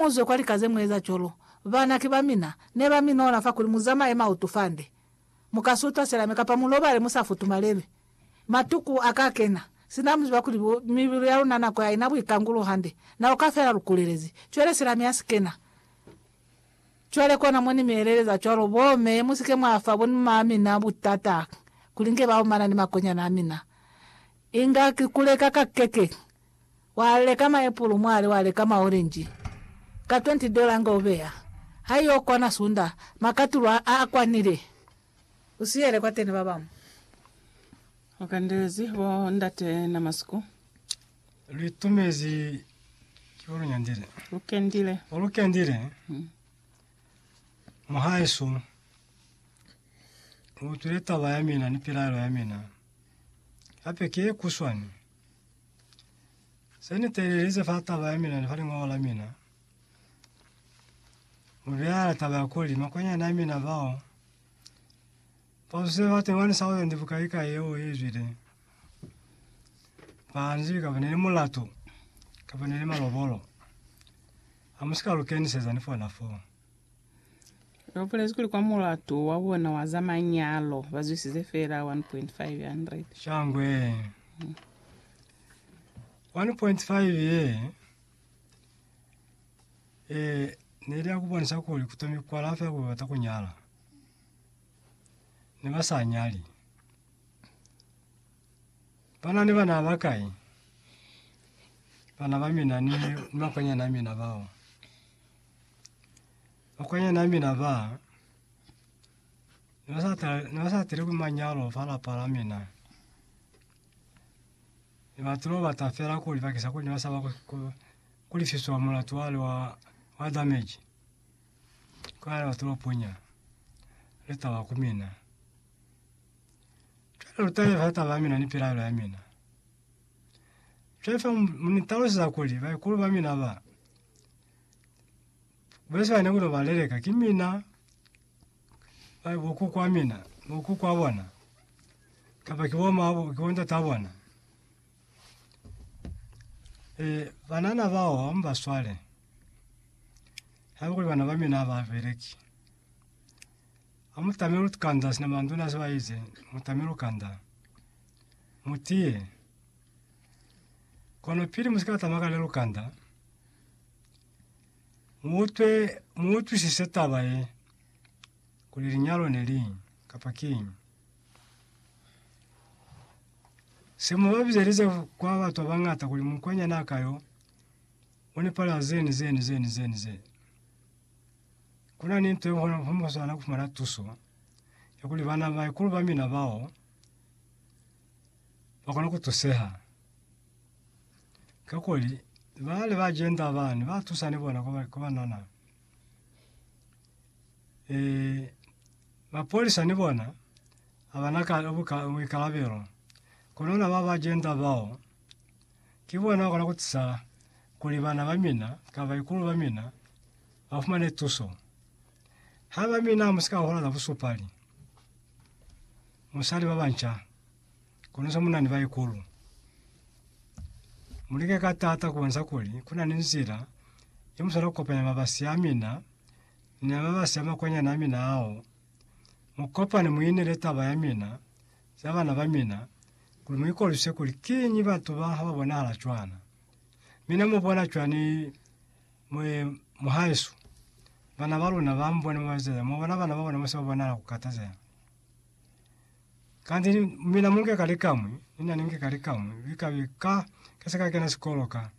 Muzwe kwa lika ze mueza cwalo. Bana, ki bamina, ne ba minola fa kuli muzamaye mautu fande. Muka sutwa selame kapa mulobale musa futumalelwi. Matuku a ka kena, sina muziba kuli bo, mibilu ya luna nako ya ina buikangulo hande. Na uka fela lu kulelezi. Cwale selame ya si kena. Cwale kona mo ni mi eleleza cwalo, Bo me, musike mwa fa bonma a mina butata kuli nge ba omana ni makonyana a mina. Inga ki kuleka ka keke. Wa leka maepulu mwali wa leka maorenji ka 20 dola nga u beya ha i yo kwana sunda makatulo a a kwanile. U siyele kwateni ba bañwi. U kandelezi bo ndate na masiku. Lu itumezi ki bo lu nyandile. Lu kendile. O lu kendile. Muhaisu, u utwile taba ya mina ni pilaelo ya mina. Hape ki ye kuswani. Se ni teelelize fa taba ya mina ni fa lingoho la mina, mu beela taba ya kuli makwanyani a mina bao ba zuze ba 21,000 bukaikai yeo ye zwile, ba nzi kaba ne ni mulatu, kaba ne ni malobolo. Ha mu si ka lu keniseza ni fona foo. Lu bulezi kuli kwa mulatu wa bona wa za manyalo ba zwisize fela 1.500. Shangwe. 1.5 ye eh ne li ya ku bonisa kuli ku tomi kwa lafa ya ku bata ku nyala. Ne ba sa nyali. Ba na ni bana ba kai? Bana ba mina ni makwanyana a mina bao. Bakwanyana mina ba ne ba sa tala, ne ba sa tele ku manyalo fa lapa la mina. Ne ba tulo bata fela kuli bakisa kuli ne ba sa ba ku- ku- ku lifiswa mulatu wale wa wa damage. Kwa ba tulo punya le taba ku mina. taba ya mina ni pelaelo ya mina. Fefo mu ni talusa kuli baikulu ba mina ba Beswana kuno baleleka ki mina ba boku kwa mina boku kwa bona kapa ki bo mabo ki bonta ta bona e banana bao hom ba swale hauli bana ba mina ba bereki amuta mulu tukanda sina manduna saba ize muta mulu kanda mutie kono pili musikata magale lukanda Mu utwe, mu utwisise taba ye, kuli linyalo ne li kapa king. Se mu ba bizelize kwa batho ba bangata kuli mukwanyana a kayo, o nepala zeni zeni zeni zeni zeni. Kuna ni ntwe hona ho mo swana kufumana tuso, ya kuli bana ba ikulu ba mina bao, ba kona kutuseha. Kakuli bana ba jenda bani ba tusa ni bona kuba kuba nana e mapolisa ni bona abana ka buka boikarabelo kunona ba ba jenda bao ke bona kona ku tisa kuli bana ba mina ka ba ikulu ba mina ba fumane tuso ha ba mina musika hola busupali musali ba banca. Kono za munani baikulu, mulike ka tata kubonisa kuli kunani nzila yemusana kukopanya mabasi amina ni amabasi amakwanyana amina ao. Mukopane muinele taba yamina za bana bamina kuli muikolwise kuli kiñi batu ba haba bonahala cwana. Mina mubona cwani mwe muhaisu? Bana baluna bamubone mubaezeza, mubona bana babona mose babonahala kukatazeha. Kanti ni- mina munge kali kamwi, nina ninge kali kamwi, vikabi ka kese ka kena sikolo ka.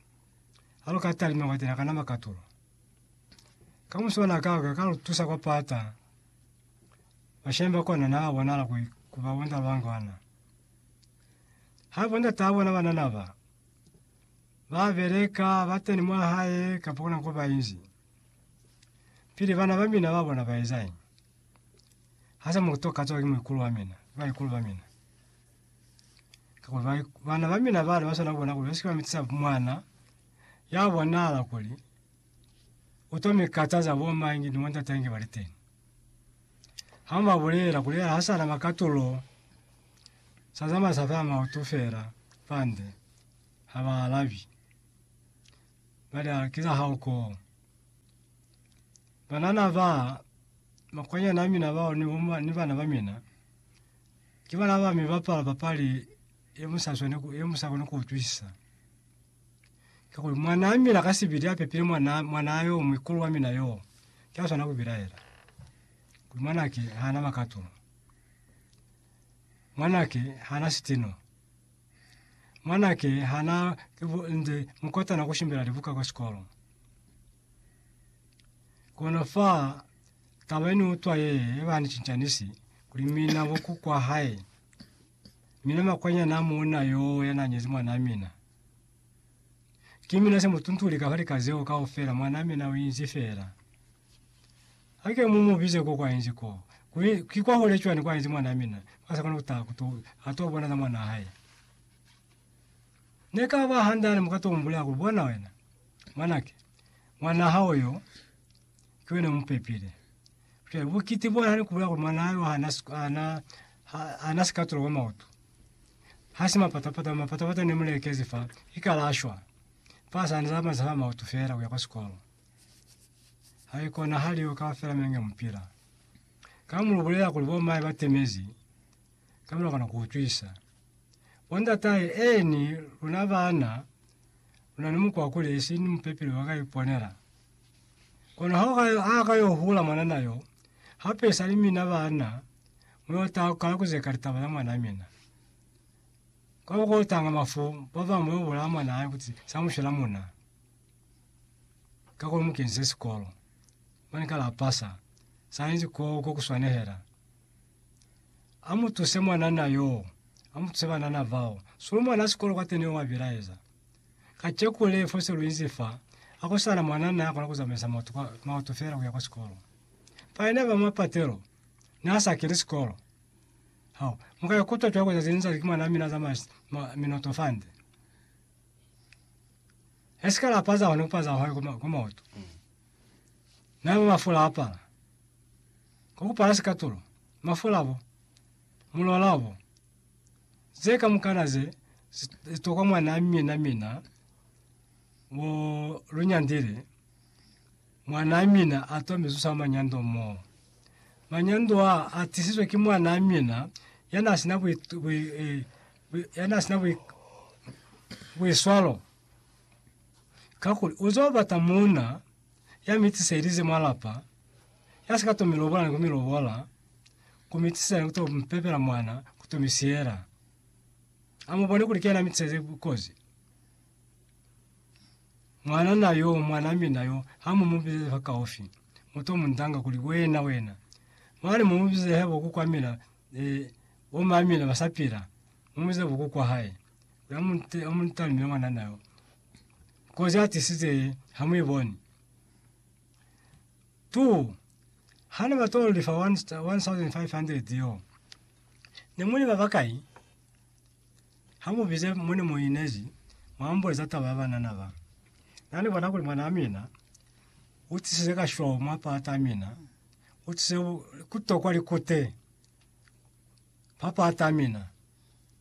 Alo ka talima kwati na kana makatulo. Kamuso na ka ka kalo tusa kwa pata, mashemba kona na bona la kwi kuba wenda wangwana. Ha bona tabo na bana naba, ba beleka, ba teni mwa hae, kapo na kuba inzi. Pili bana ba mina ba bona ba ezae. Ha sa mutu ka tswaki muikulu wa mina, baikulu ba mina. Kakuli ba, bana ba mina bale ba swana bona kuli ba sikwa mitisa mwana ya bonahala kuli o to mi kataza bo mangi ni wanda tangi ba liteni. Ha ma bulela kuli ha sana makatulo sa zama sa fa mautu fela fande ha ba alabi. Bale a kiza ha uko. Banana ba makwanyani a mina bao ni bo ni bana ba mina, ki bana ba mi bapala papali ye mu sa swane ku, ye mu sa koni ku utwisisa. Kakuli mwanaa mina ka sibili a pepile mwana, mwanaa yo muikulu wa mina yo, ki a swana ku bilaela. Kuli mwanake ha na makato. Mwanake ha na sitino. Mwanake ha na, ki bo nze mukotana ku shimbela libuka kwa sikolo. Kono fa taba ni utwa ye ba ni cincanisi kuli mina bo ku kwa hae. Mina makwanyana a muuna yo ya na nyezi mwanaa mina. Ki mina se mu tuntuli ka fa lika zeo kaufela mwanaa mina o inzi fela. Ha ke mu mu bize ko kwa inzi ko, kuli ki kwa hole cwani kwa inzi mwanaa mina, ha sa kona ku taha ku to, ha to bona za mwanaa hae. Ne ka ba handale mu ka to mu bulela kuli, Bona wena, mwanake, Mwanaa hao yo, ki wena mu pepile. Jwale bukiti bona ni kubulela kuli mwanaa yo hana, hana, hana sikatulo kwa maoto. Hasi mapatapata, mapatapata ne mulekezi fa, ikalashwa. Fa sa ni zamaiza fa maoto fela kuya kwa sikolo. Haikona hali yo kaufela menge mupila. Ka mulubulela kuli bo mae batemezi, ka mora kona ku ucwisa. Bo ndatahe, eeni, luna bana, luna ni mukwa kuli esi ni mupepeli wa ka iponela. Kono ha ka, ha ka yo hula mwanana yo, hape esali mina bana, mu yo taha kukala kuzeka litaba za mwana mina. Kwa bo ko tanga mafu, ba bamwi ba yo bulaya mwana hae kuti sa mu shela muna. Ka kuli mu kenize sikolo. Mane ka lapasa. Sa inzi ko, ko ku swanehela. Amutuse mwanana yoo. Amutuse banana bao. Sulu mwana sikolo kwateni wa bilaeza. Kacheku le fose luinzi fa, akosana mwanana akona kuzamaisa maoto, kwa, maoto fela kuya kwa sikolo. Paene ba mapatelo, nasa kili sikolo. Hao, muka yakutwa tuya kuza zinza ziki mwana mina zamaisa ma, minoto fande. Esikala apaza hone kupaza hone kuma, kumaoto. Naba mafula apala. Ku kupala sikatulo, mafula bo mulola bo ze kamukana ze zi tokwa mwana a mina mina wo lu nyandile, mwana a mina a twa mizuso ya manyando mo. Manyando a a tisizwe ki mwana a mina ya na sina ya na sina buiswalo, kakuli u zo bata muuna ya mi tiselize mwa lapa. Ya si ka to mi lobola ni ku mi lobola, ku mi tisela ni ku to mi pepela mwana, ku to mi siyela. A mu bone kuli ki yena mi tiseze kozi. Mwanana yo, mwanaa mina yo, ha mu mu bizezi fa kaufi, mu to mu ndanga kuli, Wena, wena. Mane mu mu bizeze hebo ku kwa mina, eh, bo maa mina ba sa pila, mu mu bizeze bo ku kwa hae. Kuli a mu nte, a mu ntalimile mwanana yo. Kozi a tisize, ha mu i boni. 2, Ha ne ba t'o li fa 1,500 y'o, ne mu li ba bakai? Ha mu bize mo ne mu inezi, mwa mbuleza taba ya banana ba. Na ni bona kuli mwanaa mina u tisize kashwau mwa pata ya mina, u tisize ku tokwa likute mwa pata ya mina.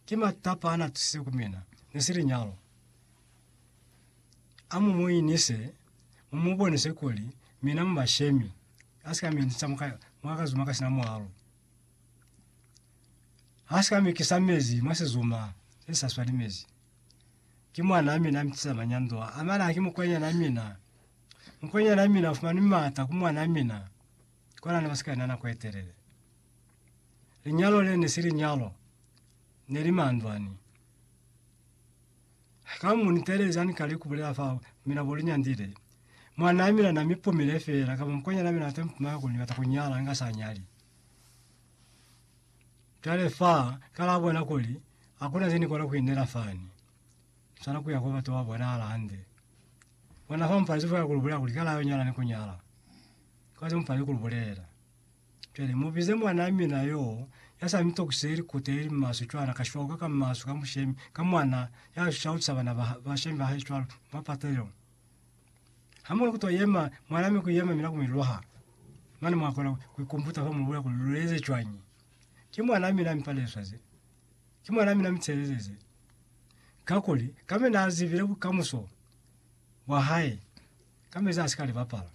Ki matapa a na tisize ku mina. Ne si li nyalo. A mu mu inise, mu mu bonise kuli mina mu bashemi, ha si ka mi inisa mwa, mwa kazuma ka sina mwalo. Ha si ka mi kisa mezi mwa sizuma se sa swani mezi. Ki mwanaa mina a mi tisa manyando a, amana ha ki mukwenyana mina. Mukwenyana mina u fumani maata ku mwanaa mina, kwa na ne ba si ka ena nako e telele. Linyalo le ne si linyalo, ne li mandwani. Haka mu ni teeleza ni kale ku bulela fao, mi na bo li nyandile. Mwanaa mina na mi pumile feela, kamba mukwanyana mina ate mpumaka kuli ni bata ku nyala, nga sa nyali. Cwale fa, ka la bona kuli, hakuna ze ni kona ku inela fani. Ni swana kuya kwa batu ba bonahala hande. Bona fa mupali zifwe ka ku lu bulela kuli ka la yo nyala ni ku nyala. Kwa ze mupali ku lu bulela. Cwale mubize mwanaa mina yoo ya sa mitokise likuta ye li maswe cwana, ka shwauka ka maswe ka mushemi, ka mwana ya shautisa bana ba, bashemi ba hae cwalo, mwa patelelo. Ha mu kuto yema, mwanaa mi ku yema mina ku mi lwaha. Mane mwa kona ku ikumbuta fa mu bulela kuli lu eze cwañi. Ki mwanaa mina mi paleswaze. Ki mwanaa mina mi tshelezeze. Kakuli, kambe naa zibile bukamuso bwa hae, ka mezi a si ka li bapala.